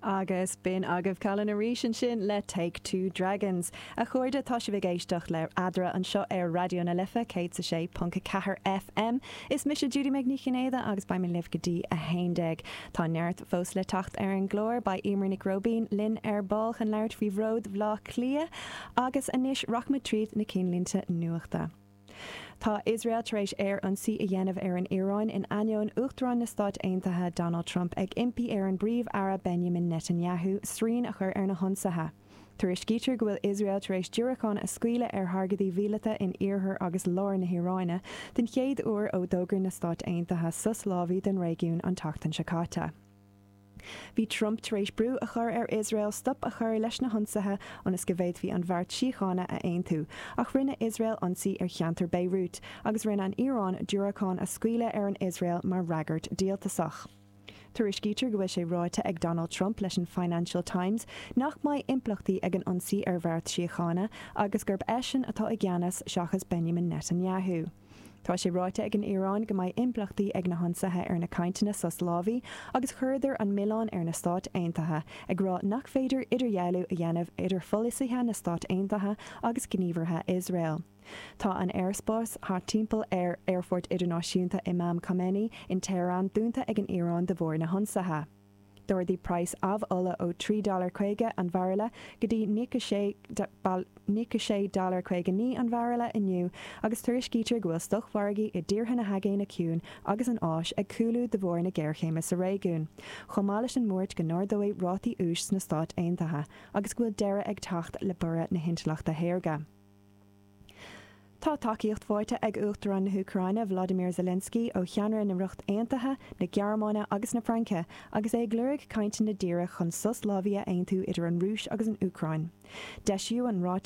Agus b'in agaibh Callan arís ansin le Take Two Dragons. A chairde, tá sibh ag éisteacht le Eadra anseo ar Raidió na Life 106.4 FM. Is mise Judy Meg Ní Chinnéide agus beidh mé libh go dtí a haon déag. Tá neart fós le teacht ar an gclár. Beidh Emer Nic Róibín linn ar ball chun labhairt faoi Bhród Bhleá Cliath. Agus anois rachaimid tríd na cinnlínte nuachta. Tá Iosrael tar éis aer-ionsaí a dhéanamh ar an Iaráin in ainneoin Uachtarán na Stát Aontaithe Donald Trump ag impí ar an bPríomh-Aire Benjamin Netanyahu srian a chur ar na hionsaithe. Tuairiscítear go bhfuil Iosrael tar éis diúracáin a scaoileadh ar thargaidí mhíleata in iarthar agus lár na hIaráine den chéad uair ó d'fhógair na Stáit Aontaithe sos lámhaigh don réigiún an tseachtain seo caite. Bhí Trump tar éis brú a chur ar Iosrael stop a chur leis na hionsaithe ionas go bhféadfaí an bheart síochána a aontú, ach rinne Iosrael ionsaí ar cheantar Beirut agus rinne an Iaráin diúracáin a scaoileadh ar an Iosrael mar fhreagairt díoltasach. Tuairiscítear go bhfuil sé ráite ag Donald Trump leis an Financial Times nach mbeidh impleachtaí ag an ionsaí ar bheart síochána agus gurb eisean atá i gceannas seachas Benjamin Netanyahu. Tá sé ráite ag an Iaráin go mbeidh impleachtaí ag na hionsaithe ar na cainteanna sos lámhaigh agus chuireadar an milleán ar na Stáit Aontaithe, ag rá nach féidir idirdhealú a dhéanamh idir pholasaithe na Stát Aontaithe agus gníomhartha Iosrael. Tá an aerspás thart timpeall ar Aerfort Idirnáisiúnta Imam Khomeini in Tehran dúnta ag an Iaráin de bharr na hionsaithe. D'ardaigh praghas amhola ó $3.50 an bhairille go dtí $96.59 an bhairille inniu agus tuairiscítear go bhfuil stoc-mhargaí i dtíortha na hAigéine Ciúin agus an Áis ag cúlú de bharr na géarchéime sa réigiún, chomh maith leis an mbuairt go n-ardóidh rátaí úis sna Stáit Aontaithe agus go bhfuil deireadh ag teacht le borradh na hintleachta shaorga. Tá tacaíocht faighte ag Uachtarán na hÚcráine Vladimir Zelensky ó cheannairí na Ríocht Aontaithe, na Gearmáine agus na Fraince agus é ag lorg cainteanna díreach chun sos lámhaigh a aontú idir an Rúis agus an Úcráin. D'eisíodh an